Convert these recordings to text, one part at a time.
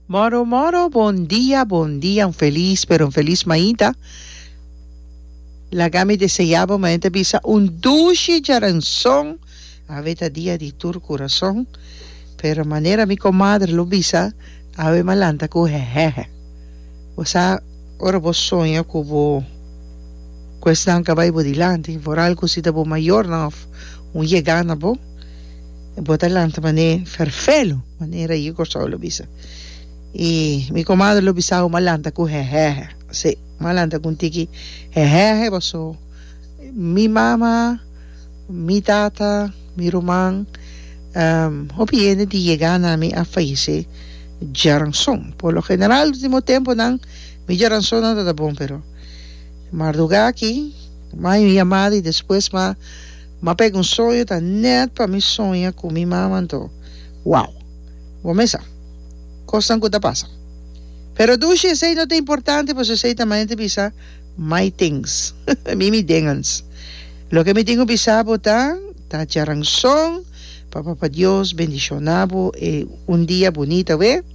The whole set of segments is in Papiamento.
Moro moro bon dia bon dia un felis pero un felis maida laga mi deseá bo mañana ta bisa un dushi djaranson awe ta dia di tur kurason pero manera mi komadre lo bisa awe m'a lanta ku hehehe bo sa ora bo soña ku bo ku esnan ka bai bo dilanti vooral ku si ta bo mayornan òf un yegana bo. Bo ta lanta manera e ferfelo, manera yi Kòrsou lo bisa. I mi komadre lo bisa bo ma lanta ku hèhèhè. Sí, ma lanta ku un tiki hèhèhè paso mi mama, mi tata, mi ruman, hopi hende di yega na mi a fayesé djaranson. Por lo general último tempunan mi djaransonnan no ta bon pero mardugá aki, mayo un yamada i despues ma Ma pek un soño ta net pa mi soña ku mi mama anto. Wow! Bo mesa kosnan ku ta pasa. Pero dushi esei no ta importante pasobra esei ta manera di bisa my things. Mi mi dingan's. Loke mi tin ku bisa bo ta ta djaranson pa Papa Dios bendishona bo e un dia bunita wé,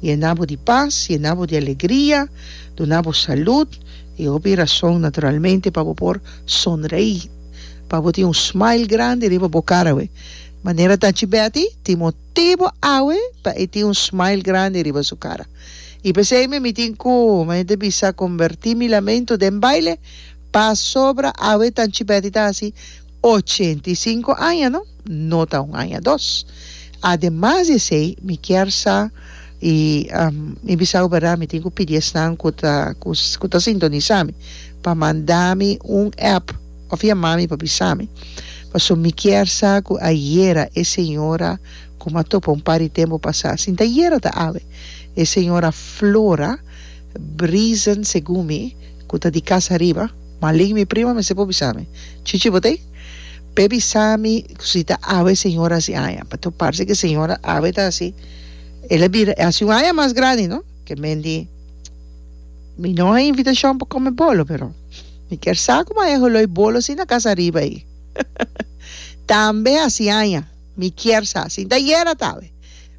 yena bo di pas, yena bo di alegria, duna bo salud i hopi rason naturalmente pa bo por sonrei. pa bo tin un smile grandi riba bo cara we manera ta chi Betty tin motibo awe pa e tin un smile grandi riba su cara y pesey mi mi tin cu mi hende bisa converti mi lamento den baile pasobra awe ta chi Betty ta haci ochenta y cinco aña no. No ta un aña dos. Ademas di esei mi kier sa i mi bisa bo berdad mi tin ku pidi esnan ku ta ku ta sintonisa mi pa manda mi un app òf yama mi pa bisa mi paso mi kier sa ku ayera e señora ku mi a topa un par di tempu pasá sinta ayera ta awe e señora Flora Brisen segun mi ku ta di kas ariba Malin mi prima mester por bisa mi chichi bo ta Pe bisa mi si ta awe señor a hasi aña pato parse ke señor awe ta hasi el a bira e hasi un aña mas grandi no ke men di mi no a invitashon pa kome bolo pero mi ker sa kuma e holoi bolo si na kasa ariba ayi tambe hasi aña mi kier sa si ta yera ta awe.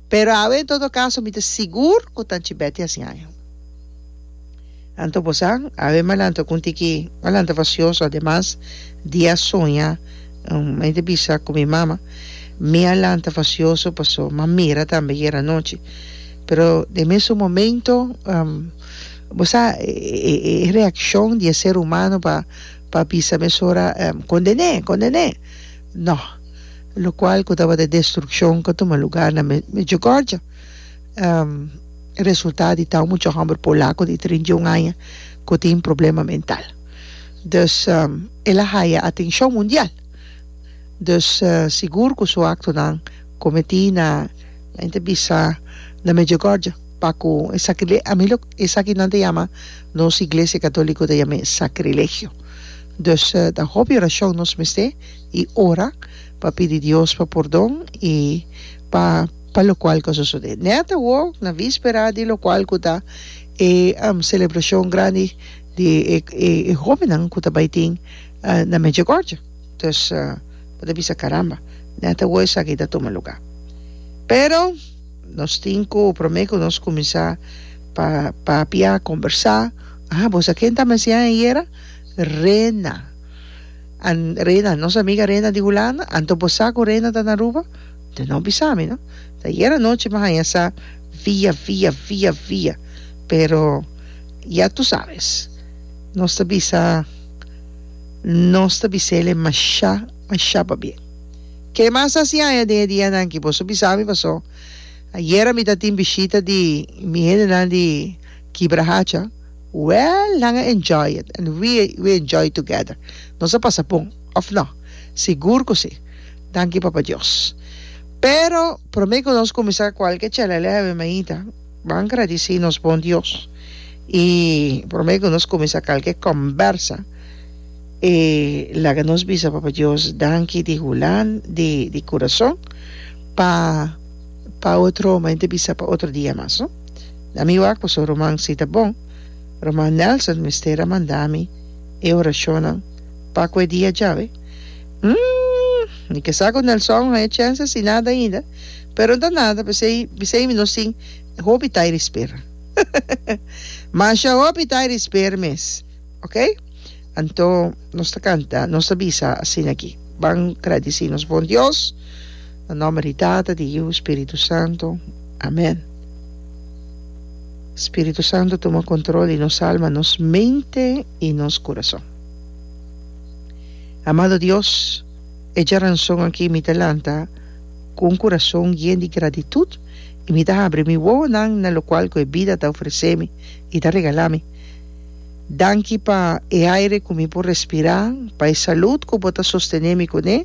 Pero awe en todo caso mi ta sigur cu ta Chibeti a siñaña. Anto bo sa, awe Malanta cu un tiki Malanta facioso ademas di a soña un mente bisa cu mi mama, mi a lanta facioso paso m'a mira tambe ayer anochi. Pero den mesun momento bo sa e reaccion di e ser humano pa pa bisa mesora condené, condené. No. Locual cu tabata destruccion ca tuma lugar na Medjugorje. Resultado di tau mucha homber polaco di treinta y un aña cu tin problema mental. Dus el a haya atencion mundial. Dus sigur cu su actonan cometi na men ta bisa na Medjugorje pacu esaki esaki nan ta yama nos Iglesia Catolico ta yam'e sacrilegio. Dus ta hopi orashon nos mester i ora pa pidi Dios pa pordon i pa pa lokual ku a sosodé. Nèt awó na víspera di lokual ku ta e selebrashon grandi di e e hóbennan ku ta bai tin na Medjugorje. Dus bo ta bisa, Karamba, nèt awó esaki ta tuma lugá. Pero. Nos tin cu prome cu nos cuminsa pa papia, combersa, ah boso a ken ta mesian ayera? Rena. An Rena, nos amiga Rena di Hulanda, anto bo sa cu Rena ta na Aruba? Te no bisa mi no. Ta ayer anochi mi a haña sa via via via via, pero ya tu sabes, nos ta bisa, nos ta bisele masha. a shaba bien. Ke mas a hasi aña den e dianan ki boso bisa mi paso ayera mi ta tin bishita di mi hendenan di Kibra Hacha? Well nan a enjoy it and we we enjoy together nos a pasa bon of no? Sigur ku si danki Papa Dios pero prome ku nos kuminsa kualke chelele a habi mainta ban gradisi nos bon Dios i prome ku nos kuminsa kalke kombersa E laga nos bisa Papa Dios danki di hulan di di kurason pa pa otro home ta bisa pa otro dia mas no na mi wak paso ruman si ta bon ruman Nelson mester a manda mi e orashonnan pa ku e dia djawe hm mi ke sa ku Nelson haya chance si nada ainda pero no ta nada pesey pesey mi nos tin hopi tairi sper masha hopi tairi sper mes. Ok, anto nos ta canta, nos ta bisa asina aki, Ban gradici nos bon Dios, na nomber di Tata, di Yiu, Spiritu Santo. Amen. Spiritu Santo tuma control di nos alma, nos mente y nos curason. Amado Dios, e dja ranson aki mi ta lanta cu un curason yen di gratitud y mi ta habri mi wowonan na locual cu e bida ta ofrecemi y ta regalami. Danki pa e aire ku mi por respirá, pa e salud ku bo ta sostené mi kuné,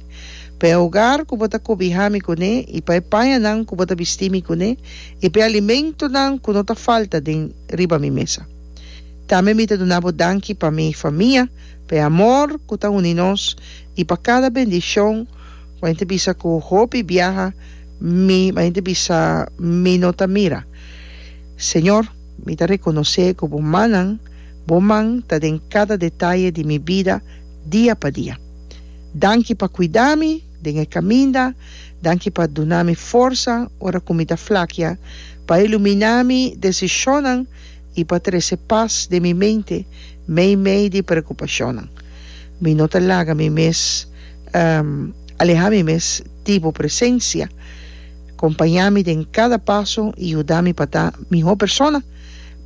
pa e ogar ku bo ta kobihá mi kuné i pa e pañanan ku bo ta bistí mi kuné i pa e alimentunan ku no ta falta den riba mi mesa. Tambe mi ta duna bo danki pa mi famia, pa e amor ku ta uni nos i pa kada bendishon ku a henter bisa ku hopi biaha mi a henter bisa mi no ta mira, Señor. Mi ta rekonosé ku bo mannan, bo man, ta den kada detaye di mi bida dia pa dia. Danki pa kuidá mi den e kaminda, danki pa duna mi forsa ora ku mi ta flakia, pa iluminá mi desishonnan i pa trese pas den mi mente meimei di preokupashonnan. Mi no ta laga mi mes alehá mi mes di bo presensia. Kompañá mi den kada paso i yuda mi pa ta mihó persona,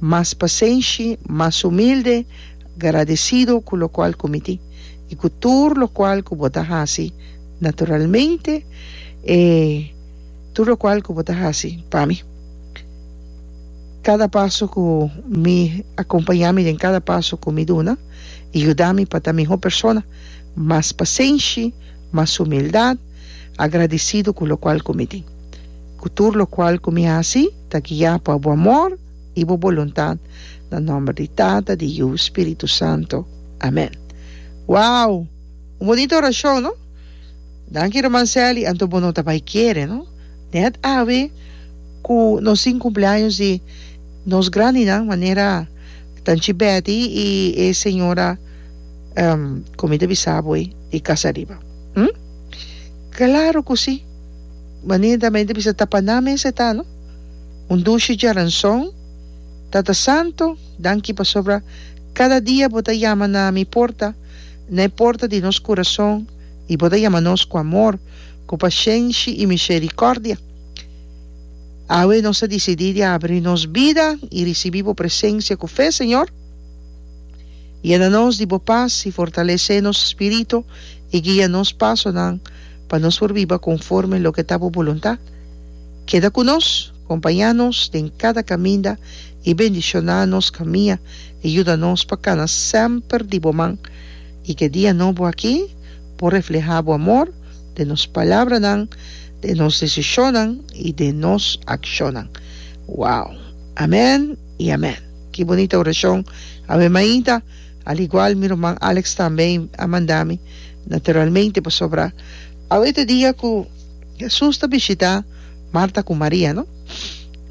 mas pasenshi, mas umilde, gradesido ku lokual ku mi tin i ku tur lokual ku bo ta hasi naturalmente, e tur lokual ku bo ta hasi pa mi. Kada paso ku mi a kompañá mi den kada paso ku mi duna i yuda mi pa ta mihó persona, mas pasenshi, mas humildad, agradisido cu locual cu mi tin, cu tur locual cu mi haci ta guia pa bo amor y bo boluntad, na nomber di Tata, di Yiu, Spiritu Santo. Amen. Wow! Un bonito oracion, no? Danki Herman Sally, anto bo no ta bay kere, no? Net awe cu nos tin cumpleaños di nos grandinan manera Tanchi Betty y e Señora. Con mi ta bisa bo ey e casa ariba. Hm. Claro cu si. Manin ta mey ta bisa ta pa nan mes e ta no. Un dushi dje ranzon. Tata Santo, danki pasobra cada dia bo ta yama na mi porta, na e porta di nos curazon y bo ta yama nos cu amor, cu pacienshi y misericordia. Awe nos ta dicidi di abri nos bida y ricibi bo presencia cu fe, Señor. Yena nos di bo pas i fortalesé nos spirito i guia nos pasonan pa nos por biba konforme loke ta bo boluntat. Keda ku nos, kompañá nos den kada kaminda i bendishoná nos kamia i yuda nos pa kana semper di bo man. I ke dia nobo aki por reflehá bo amor den nos palabranan, den nos desishonnan i den nos akshonnan. Wow! Amèn! y amen. Ki bonita oracion awe mainta al igual mi ruman Alex tambe a manda mi naturalmente pasobra awe ta dia cu Jesus ta bishita Marta cu Maria no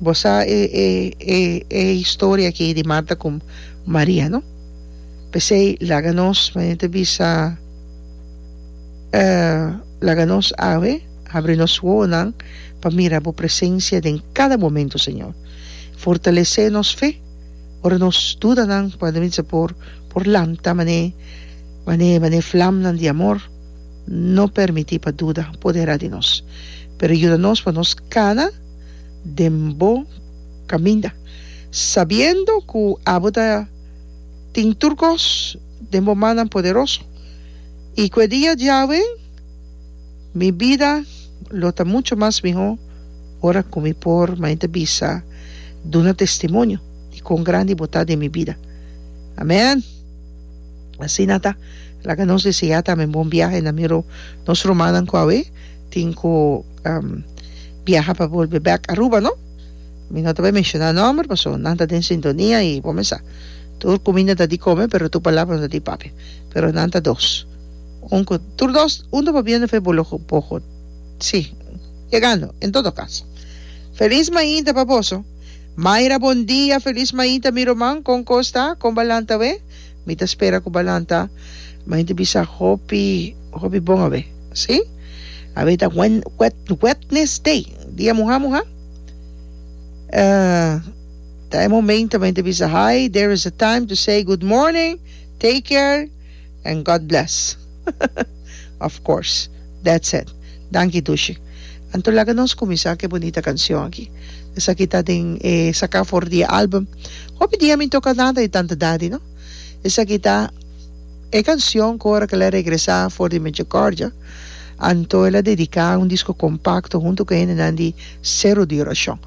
bo sa e e e e historia aki di Marta cu Maria no pesey laga nos manera ta bisa laga nos awe habri nos wowonan pa mira bo presencia den cada momento Señor. Fortalesé nos fe ora nos dudanan por a bisa por por lanta man'é man'é man'é flamnan di amor no permití pa duda poderá di nos pero yuda nos pa nos kana den bo kaminda sabiendo ku abo ta tin tur kos den bo mannan poderoso i ku e dia Yahwe Mi bida lo ta mucho mas miho ora ku mi por mainta bisa duna testimonio di kon grandi bo ta den mi bida. Amen! Asina ta. Laga nos deseá tambe un bon biahe na Miro nos rumannan ku awe tin ku biaha pa bolbe bèk Aruba, no? Mi no ta bai menshoná nòmber pasobra nan ta den sintonia i bo mester sa. Tur kuminda ta di kome pero tur palabra no ta di papia. Pero nan ta dos. Un cu tur dos, un ta babiendo fe bo lo poco si, yegando, en todo caso. Feliz mainta pa boso. Mayra bon dia feliz mainta mi roman con cos ta con ba lanta awe mi ta spera cu ba lanta mainta bisa hopi hopi bon awe si awe ta wen wed wednes day dia muha muha eh ta e momento mainta bisa hi there is a time to say good morning take care and God bless of course that's it danki Dushi anto laga nos kuminsa ku e bunita kanshon aki esaki ta den e saka for di e album hopi dia mi toka nada di tanta dadi no esaki ta e kanshon ku ora ku el a regresa for di Michericordia anto el a dedica un disco compacto hunto ku hendenan di Cero di Oracion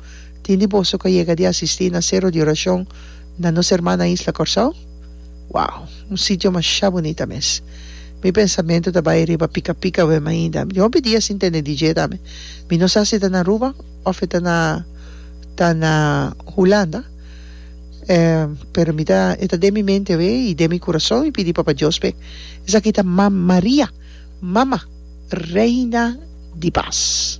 tin di boso ku a yega di asisti na Cero di Oracion na nos herman na isla Corsou? Wow! Un sitio masha bunita mes. Mi pensamentu ta bai riba Pica Pica awe mainda. Mi hopi dia sin tene DJ tambe. Mi no sa si ta na Aruba of e ta na ta na Hulanda. Pero mi ta e ta den mi mente awe i den mi kurason mi pidi Papa Dios p'e. Esaki ta Mam Maria, Mama, Reina di Pas.